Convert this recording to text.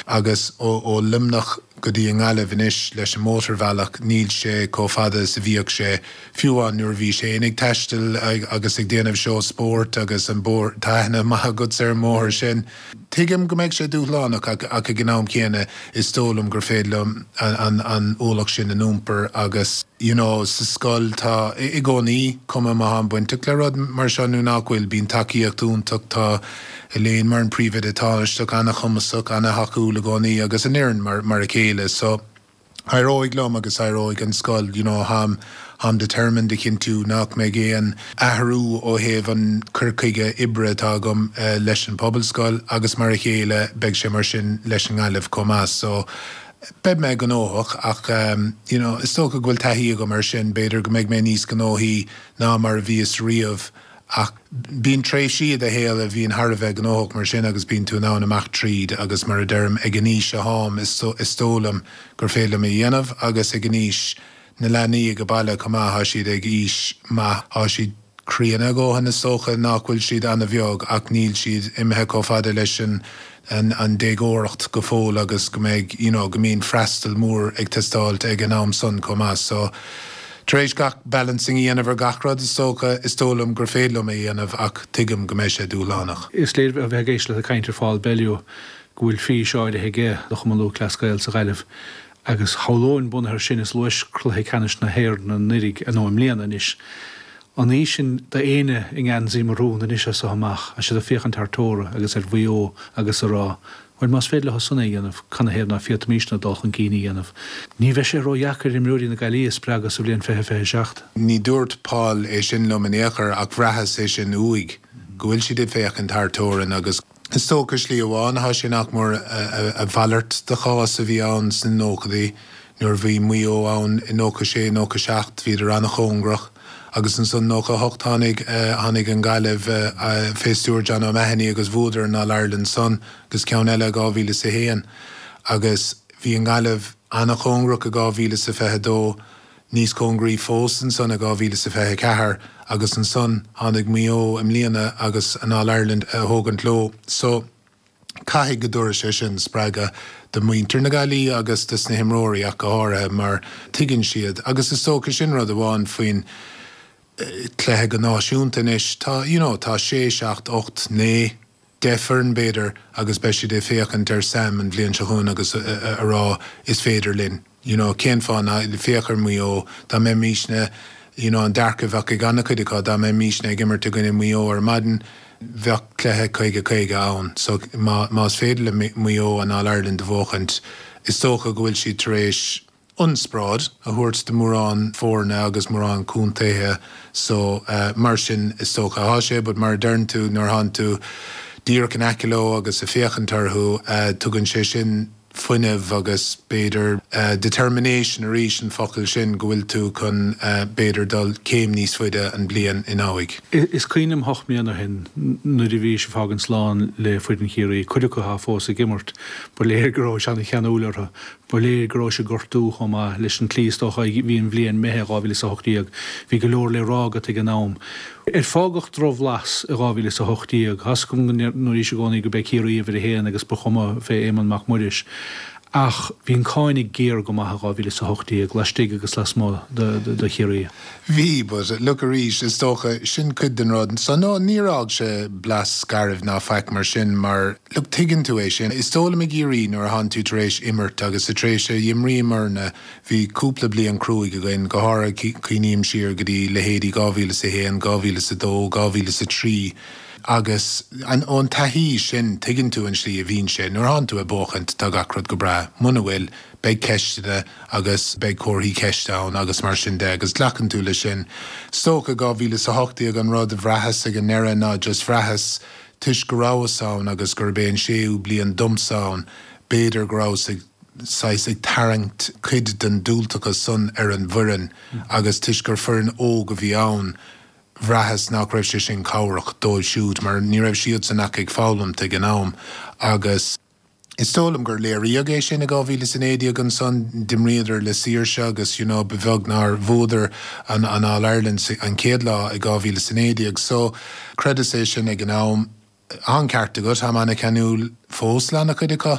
Agus ó Luimneach go dtí i nGaillimh anois leis an mótarbhealach, níl sé chomh fada is a bhíodh sé, fiú amháin nuair a bhí sé sin ag taisteal agus ag déanamh seó spóirt agus an bóthar, tá aithne maith agatsa ar an mbóthar sin. Tuigim go mbeidh sé dúshlánach ach ag an am céanna is dóigh liom gur féidir liom an ualach sin a iompar agus you know sa scoil tá, i gcónaí, cuma má táim bainteach le rud mar seo nó nach bhfuil, bíonn tacaíocht iontach, tá. Elaine mar an príomhoide tánaisteach, an-chumasach, an-tacúil i gcónaí agus an fhoireann mar, mar a chéile. So, éireoidh liom agus éireoidh an scoil, you know, táim, táim determined a chinntiú nach mbeidh aon athrú ó thaobh an cur chuige oibre atá agam leis an Pobalscoil agus mar a chéile, beidh sé mar sin leis an nGaillimh chomh maith. So, beidh mé gnóthach ach ehm, you know, is dócha go bhfuil taithí agam ar sin, b'fhéidir go mbeidh mé níos gnóthaí ná mar a bhíos riamh. Ach bíonn tréimhsí i do shaol a bhíonn thar a bheith gnóthach, mar sin, agus bíonn tú in ann teacht tríd, agus mar a deirim, ag an aois atáim, is dóigh liom gur féidir liom é a dhéanamh, agus ag an aois, na leanaí ag an baile chomh maith, tá siad ag aois maith, tá siad críonna a ndóthain, is dócha, nach bhfuil siad an-bheag, ach níl siad imithe chomh fada leis an. an an déagóireacht go fóill agus go mbeidh you know go mbíonn freastal mór ag teastáilt ag an am san chomh maith so tar éis gach balancing a dhéanamh ar gach rud is dócha is dóigh liom gur féidir liom é dhéanamh ach tuigim go mbeidh sé dúshlánach. Is léir ó bheith ag éisteacht leat ag caint ar Phaul Bellew go bhfuil fís áirithe aige do Chumann Lúthchleas Gael sa Ghaillimh agus shamhlóinn bunaithe ar sin is bua i gCluiche Ceannais na hÉireann anuraidh nó i mbliana anois An aois ann d'éinne i ngeansaí marún anois as so amach, is iad ag féachaint thar teora agus ar Mhaigh Eo agus a' rá, Bhuel más féidir leosan é a dhéanamh, canathaobh ná féadfaimísne dul chun cinn a dhéanamh? Ní bheidh sé ródheacair imreoirí na Gaillimhe a spreagadh sa bhliain fiche fiche a seacht. Ní dúirt Paul é sin liom in aon chor ach bhraitheas é sin uaidh, go bhfuil siad ag féachaint thar teorainn agus, Is dócha slí amháin atá sé nach mór a mhalairt de chás a bhí ann sna nóchaidí nuair a bhí Maigh Eo ann i nócha sé nócha seacht bhíodar an-chóngarach agus ansan nócha a hocht tháinig tháinig an Gaillimh fé stiúir John O'Mahony agus bhuadar an All Ireland san agus ceann eile i dhá mhíle is a haon agus bhí an Gaillimh an-chóngarach i dhá mhíle is a fiche dó Níos cóngaraí fós ansan i 2024 agus ansan tháinig Maigh Eo i mbliana agus an All Ireland a thógaint leo so caithfidh go dtabharfaidh sé sin spreagadh do muintir na Gaillimhe agus dos na himreoirí ach go háirithe mar tuigeann siad agus is dócha sin rud amháin faoin cluiche go náisiúnta anois tá you know tá sé, seacht, ocht, naoi. 10 bhfoireann b'fhéidir agus beidh siad ag féachaint ar Sam an bhliain seo chugainn agus a rá 'is féidir linn'. You know, cén fáth ná, féach ar Mhaigh Eo, dá mbeimis-ne, you know, an dearcadh a bheadh ag an-chuid acu, dá mbeimis-ne ag imirt i gcoinne Mhaigh Eo ar maidin, bheadh cluiche caoga caoga ann. So, más féidir le Maigh Eo an All-Ireland a bhuachaint, is dócha go bhfuil siad tar éis, ionspráid a thabhairt do mhórán foirne agus mórán contaetha so mar sin is dócha atá sé but mar a deireann tú nuair a thánn tú díreach in aice leo agus a' féachaint orthu tugann sé sin fuinneamh agus b'fhéidir determination arís an focal sin go bhfuil tú chun b'fhéidir dul céim níos faide an bhliain ina dhiaidh. Is cuimhin liom ocht mbliana ó shin nuair a bhís a' fágaint slán le foireann Chiarraí, cuid acu atá fós ag imirt, ba léir go rabhais ana cheanúil orthu Ba léir go raibh sé ag gortú chomh maith leat an tslí, is dócha, a bhí an bhliain imithe 2018. Bhí go leor le rá agat ag an am. Ar fágadh drochbhlas i 2018? Tá 'fhios agam go ndúraís i gcónaí gurb é Ciarraí uimhir a haon agus ba chuma fé Éamonn Mac Muiris. Ach bhí an cáineadh géar go maith i 2018, laistigh agus lasmuigh de Chiarraí. Bhí, but look arís, is dócha, sin cuid den rud. So no, níor fhág sé blas searbh ná faic mar sin mar, look, tuigeann tú é sin. Is dóigh liom i gCiarraí nuair a tháinig tú tar éis imirt agus sa tréimhse a dh'imríomarna bhí cúpla bliain cruaidh againn, go háirithe cuimhním siar go dtí leithéidí 2001, 2002, 2003 agus an, ón taithí sin tuigeann tú an tslí a bhíonn sé nuair a thánn tú ag buachaint, tá gach rud go breá. Muna bhfuil. beidh ceisteanna agus beidh comharthaí ceiste ann agus mar sin de agus glacann tú leis sin. Is dócha 2018 an rud a bhraitheas ag an ndeireadh ná just bhraitheas toisc go rabhas ann agus gurb é an séú bliain domsa ann b'fhéidir go rabhas ag saghas ag tarraingt cuid den diúltachas san ar an bhfoireann agus toisc gur foireann óg a bhí ann bhraitheas nach raibh sé sin cabhrach dóibh siúd mar ní raibh siadsan ach ag foghlaimt ag an am agus Is dóigh liom gur léiríodh é sin i 2019 ansan, d'imríodar le saoirse agus you know ba bheag nár bhuadar an an All Ireland sa an chéad lá i 2019 so chreideas é sin ag an am. Tá an ceart agat, tá mé ana cheanúil fós le ana chuid acu.